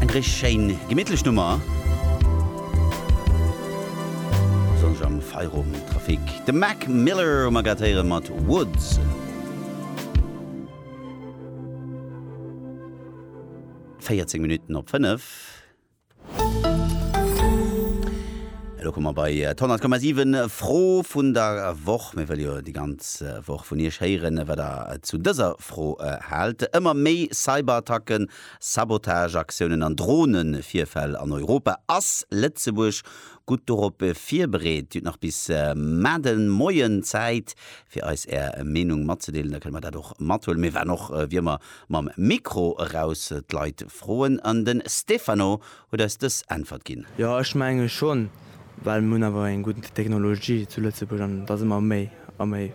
Eng richteg schéin gemittlech Nummer, besonnesch am Feierowendtrafic. De Mac Miller hu mer grad héieren mat Woods. Véierzéng Minutten op fënnef. Elo komme mer bei d'Honnertkommasiwen Fro vun der Woch. Mir wëlle jo déi ganz Woch vun Iech héieren, wat Der zu dëser Fro haalt. Ëmmer méi Cyberattacken, Sabotageaktiounen an Dronevirfäll an Europa. Ass Lëtzebuerg gutt dorop virbereet? Dir hutt nach bis mar de Moien Zäit, fir eis Är Meenung matzedeelen. Da kënne mer dat och mathuelen. Mir waren och wéi ëmmer Mam Mikro eraus d'Leit froen an den Stefano huet eis dës Äntwert ginn. Jo ech menge schonn, well mir hunn awer eng gutt Technologie zu Lëtzebuerg an et ass ëmmer méi a méi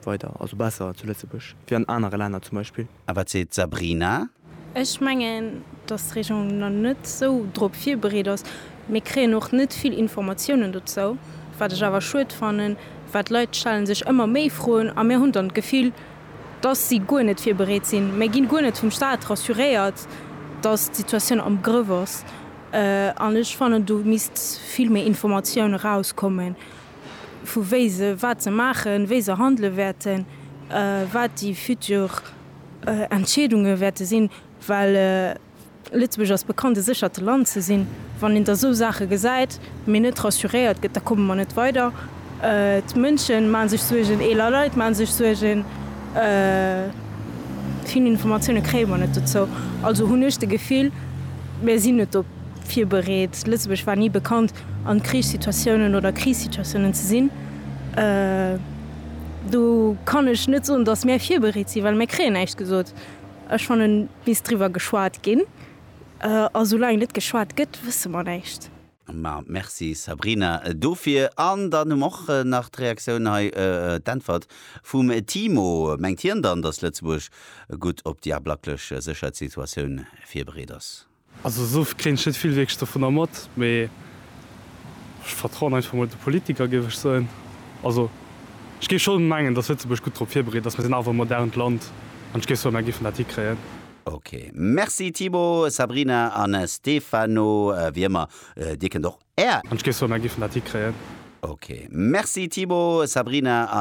weider, also besser zu Lëtzebuerg wéi an anere Länner zum Beispill. A wat seet d'Sabrina? Ech mengen, datt d'Regierung nach net esou drop virbereet ass. Mir kréien och net vill Informatiounen dozou, wat ech awer schued fannen, well d'Leit stellen sech ëmmer méi Froen a mir hunn dann d'Gefill, dass si guer net virbereet sinn. Mir ginn guer net vum Staat rassuréiert, dass d'Situatioun am Grëff ass. An ech fannen, do misst vill méi Informatioun erauskommen, vu wéi se, wat se maachen, wéi se handele wäerten, wat déi futur Entscheedunge wäerte sinn, well, Lëtzebuerg ass bekannt e séchert Land ze sinn. Wann een da sou Saache gesäit, mee net rassuréiert gëtt, da komme mer net weider. D'Mënsche maache sech Suergen, eeler Leit maache sech Suergen. Vill Informatioune kréie mer net dozou. Also hunn ech de Gefill, mir sinn net drop virbereet. Lëtzebuerg war ni bekannt an Krichssituatiounen oder Krisissituatiounen ze sinn. Do kann ech net soen, datt mir virbereet sinn, well mir kréien näischt gesot. Ech fannen et misst driwwer geschwat ginn, a soulaang net geschwat gëtt wësse mer näischt. Ma merci Sabrina dofir. An dann hu mer och nach d'Reaktioun hei, d'Äntwert vum Timo. Mengt hien dann, datt Lëtzebuerg gutt op déi ablaklech Sécherheetssituatioun virbereet ass? Also esou kréien ech net vill wierklech dovunner mat, mee ech vertrauen einfach mol de Politiker, géif ech soen. Also ech géif scho mengen, datt Lëtzebuerg gutt drop virbereet ass. Mir sinn awer e modernt Land an ech géif soen, mer géifen dat hikréien. Ok, merci Thibaut, Sabrina an Stefano, wéi ëmmer, dir kënnt och Är. An ech géif soen, mer géifen dat hikréien. Ok, merci Thibaut, Sabrina an.